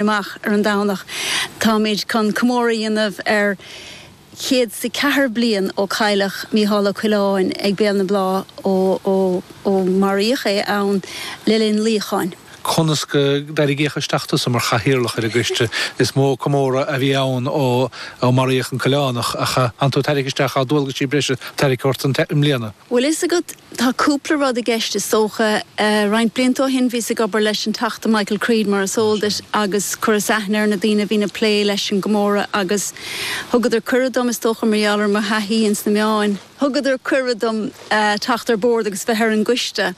amach ar an Domhnach. Táimid chun comóradh a dhéanamh ar chéad is a ceathair bliain ó cailleadh Mícheál Ó Coileáin ag Béal na Blá ó maraíodh é ann le linn luíocháin. Conas gur tarraingíodh isteach tusa mar chathaoirleach ar an gcoiste? Is mó comóradh a bhí ann ó maraíodh an Coileánach ach tánn tú ag tairric isteach, tá dualgaisí breise tairricthe ort i mbliana? Bhfuil fhios agat, tá cúpla rud i gceist is dócha. Roinnt blianta ó shin bhíos ag obair leis an Teachta Michael Creed mar is eol duit agus chuireas aithne ar na daoine a bhíonn ag plé leis an gcomóradh agus thugadar cuireadh dom, is dócha mar gheall ar mo thaithí ins na meáin, thugadar cuireadh dom teacht ar bord agus bheith ar an gcoiste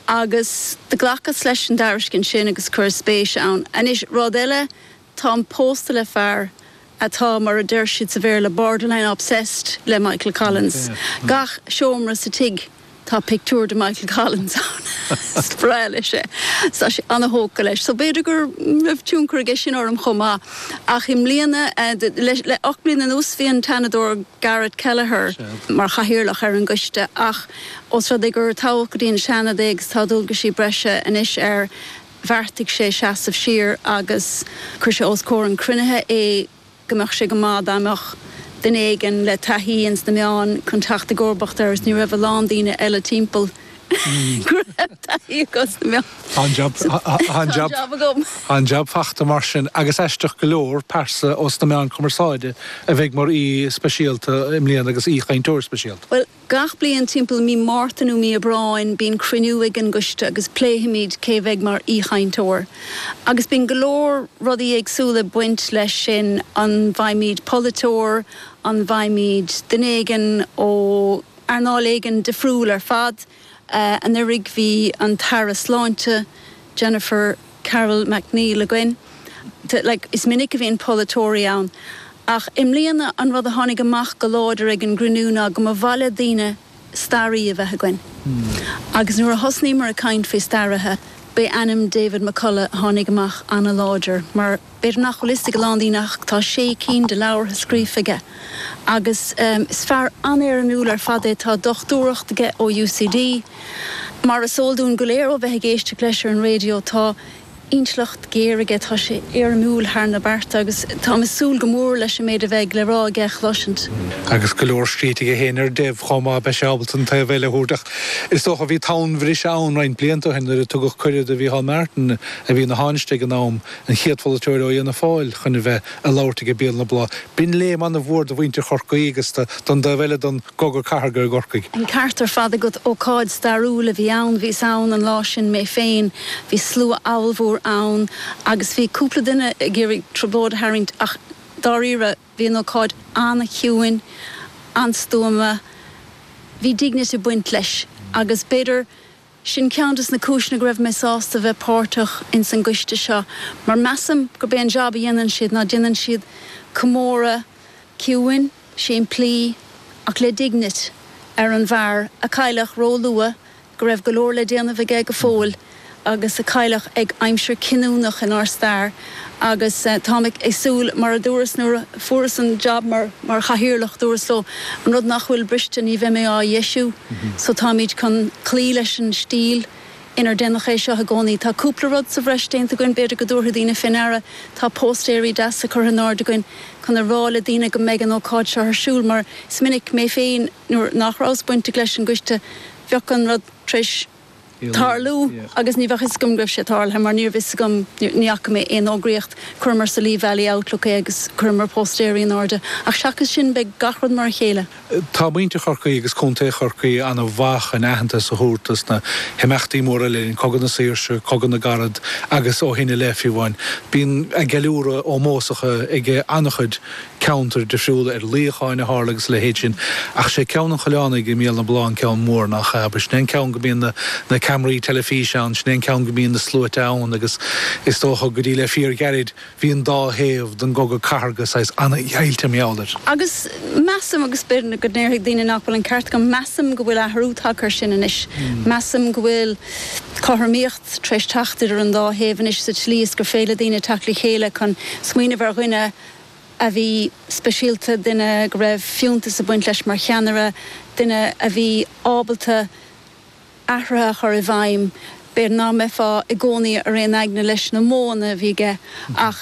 agus do ghlacas leis an dtairiscint sin agus chuireas spéis ann. Anois, rud eile Táim pósta le fear atá, mar a deir siad sa Bhéarla, borderline obsessed le Michael Collins. Gach seomra sa tigh tá pictiúr de Michael Collins ann. Is breá leis é. Tá sé an-thógtha leis. So b'fhéidir go raibh tionchar aige sin orm chomh maith. Ach i mbliana, le ocht mbliana anuas, bhí an tSeanadóir Garret Kelleher mar chathaoirleach ar an gcoiste ach os rud é gur toghadh go dtí an Seanad é agus tá dualgaisí breise anois air, bheartaigh sé seasamh siar agus chuir sé os comhair an chruinnithe é go mbeadh sé go maith dá mbeadh duine éigin le taithí ins na meáin chun teacht i gcomharbacht air is ní raibh a lán daoine eile timpeall go raibh taithí acu sna meáin. Tá an jab Tá an jab agam. Tá an jab fachta mar sin agus aisteach go leor, pearsa ós na meáin cumarsáide a bheidh mar aoi speisialta i mbliana agus aoi-chainteoir speisialta. Bhuel, Gach bliain timpeall Mí Márta nó Mí Aibreáin bíonn cruinniú ag an gCoiste agus pléifimid cé a bheidh mar aoichainteoir. Agus bíonn go leor rudaí éagsúla ag baint leis sin, an bhfaighimid polaiteoir, an bhfaighimid duine éigin ó earnáil éigin difriúil ar fad, anuraidh bhí an tAire Sláinte, Jennifer. Carroll MacNeill againn. Is minic a bhíonn polaiteoirí ann ach i mbliana an rud a tháinig amach go láidir ag an gcruinniú ná go mba mhaith le daoine staraí a bheith againn. Agus nuair a thosnaíomar ag caint faoi staraithe, b'é ainm David McCullagh a tháinig amach an-láidir mar. B'fhéidir nach bhfuil fhios ag a lán daoine ach tá sé cinn de leabhartha scríofa aige agus is fear an-éirimiúil ar fad é. Tá dochtúireacht aige ó UCD. Mar is eol dúinn go léir ó bheith ag éisteacht leis ar an raidió tá intleacht ghéar aige, tá sé éirimiúil thar na bearta agus táim ag súil go mór leis an méid a bheidh le rá aige a chloisint. Agus go leor scríte aige féin ar Dev chomh maith beidh sé ábalta an taobh eile a thabhairt ach is dócha bhí tonnbhriseadh ann roinnt blianta ó shin nuair a tugadh cuireadh do Mhícheál Martin, a bhí ina Thánaiste ag an am, An chéad pholaiteoir ó Fhianna Fáil chun a bheith ag labhairt ag an Béal na Blá. B'in léim an-mhór do mhuintir Chorcaí agus don dá thaobh eile den gcogadh cathartha i gCorcaigh. An ceart ar fad agat, ócáid stairiúil a bhí ann. Bhíos ann an lá sin mé féin. Bhí slua abhalmhór ann agus bhí cúpla duine ag iarraidh trioblóid a tharraingt ach dáiríre bhí an ócáid an-chiúin, an-stuama. Bhí dignity ag baint leis agus b'fhéidir. Sin ceann de na cúiseanna go raibh mé sásta bheith páirteach ins an gcoiste seo mar measaim gurb é an jab a dhéanann siad ná déanann siad comóradh ciúin, simplí ach le dignity ar an bhfear a cailleadh ró luath, go raibh go leor le déanamh aige go fóill agus a cailleadh ag aimsir cinniúnach inár stair. agus táim ag súil, mar a dúras nuair a fuaireas an jab mar Chathaoirleach, dúras leo, an rud nach bhfuil briste, ní bheidh mé á dheisiú, so táimid chun cloí leis an stíl inar déanadh é seo i gcónaí. Tá cúpla rud sa bhreis déanta againn, b'fhéidir go dtabharfaidh daoine fé ndeara, tá póstaeirí deasa curtha in airde againn chun a rá le daoine go mbeidh an ócáid seo ar siúl, mar is minic, mé féin, nuair nach rabhas bainteach leis an gcoiste, bheadh an rud tar éis. tarlú agus ní bheadh fhios agam go raibh sé tarlaithe mar níorbh fhios agam, ní fhaca mé aon fhógraíocht, chuireamar sa Lee Valley Outlook é agus chuireamar póstaeirí in airde ach seachas sin beidh gach rud mar a chéile. Tá muintir Chorcaí agus Contae Chorcaí ana mhaith chun aitheantas a thabhairt dos na himeachtaí móra le linn Cogadh na Saoirse, Cogadh na gCarad agus ó shin i leith fiú amháin. Bíonn ceiliúradh ómósach ag ana chuid. ceantair difriúla ar luíocháin a tharla agus a leithéid sin ach sé ceann an Choileánaigh i mBéal na Blá an ceann mór nach ea agus sin é an ceann go mbíonn na ceamaraí teilifíse ann, sin é an ceann go mbíonn na sluaite ann agus is dócha go dtí le fíorghairid bhí an dá thaobh den gcogadh cathardha saghas an-deighilte mar gheall air. Agus measaim, agus b'fhéidir go ndéarfaidh daoine nach bhfuil an ceart agam, measaim go bhfuil athrú tagtha air sin anois. Measaim go bhfuil cothromaíocht tar éis teacht idir an dá thaobh anois sa tslí is gur féidir le daoine teacht le chéile chun smaoineamh ar dhuine, a bhí speisialta, duine go raibh fiúntas ag baint leis mar cheannaire, duine a bhí ábalta athruithe a chur i bhfeidhm, b'fhéidir nach mbeifeá i gcónaí ar aon aigne leis na modhanna a bhí aige ach,